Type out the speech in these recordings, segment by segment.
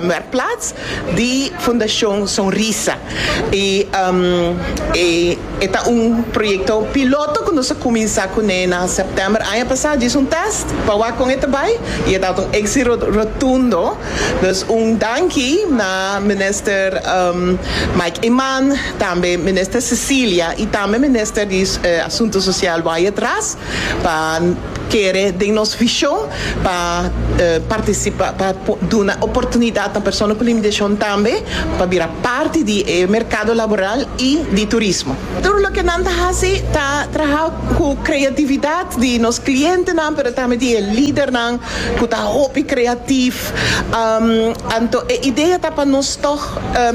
Merkplaats di Fundacion Sonrisa. I um, e, e ta un proyecto piloto cu nos a cuminsa cu ne na september aña pasa. Djis un test pa wak con e ta bay y e ta un exito rotundo. Dus un danki na minister um, Mike Eman, tambe minister Cecilia y tambe minister di Asunto Social Wyatt Ras pa kere den nos vision pa participa pa duna oportunidad na persona cu limitacion tambe pa bira parti di e mercado laboral y di turismo. Tur loke nan ta haci ta traha cu creatividad di nos clientenan pero tambe di e lidernan cu ta hopi creatief anto e idea ta pa nos tog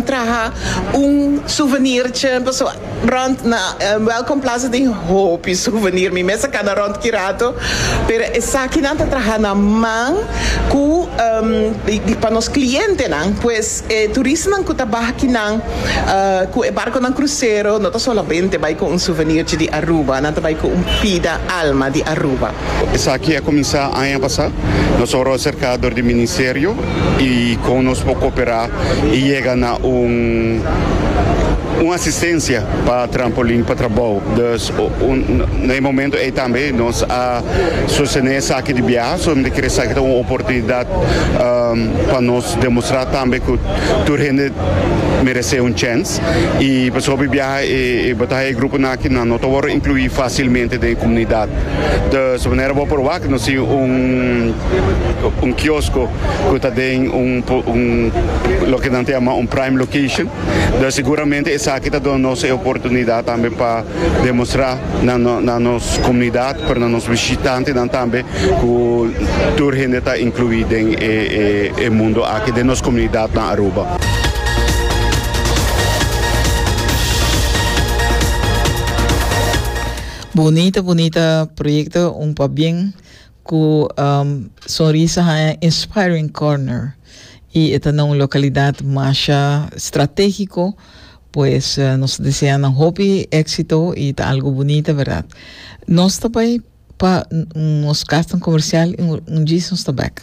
traha un souvenirtje pasobra Rond na Welcome Plaza tin hopi souvenir. Mi mes a kana rond ki rato, pero esaki nan ta traha na man ku pa nos klientenan. Pues e turisnan ku ta baha kinan ku e barkonan krusero no ta solamente bai ku un souvenirchi di Aruba, nan ta bai ku un pida alma di Aruba. Esaki a kuminsá aña pasá. Nos ora a serká dor di ministerio i kon nos por koperá i yega na un un asistensia pa Trampolin pa trabou. Dus na e momentu ei tambe nos a sostené esaki di biaha. So mi ta kere esaki ta un oportunidat pa nos demostrá tambe ku tur hende meresé un chèns. Y pues hopi biaha e bataha e gruponan aki nan no ta wòrdu inclui fácilmente den e comunidad. Dus manera bo a proba cu nos tin un kiosco cu ta den un loke nan ta yama un prime location. Dus seguramente esaki ta duna nos e oportunidad tambe pa demostra. na nos comunidad pero na nos vishitantenan tambe cu tur hende ta inclui den e mundo aki den nos comunidad na Aruba. Bunita bunita proyecto un pabien cu um, sonrisa haya inspiring corner y eta na un localidad masha strategico Pues nos desea nan hopi éxito y ta algo bonita, verdad? Nos ta bai pa nos castan comercial y un djis nos ta back.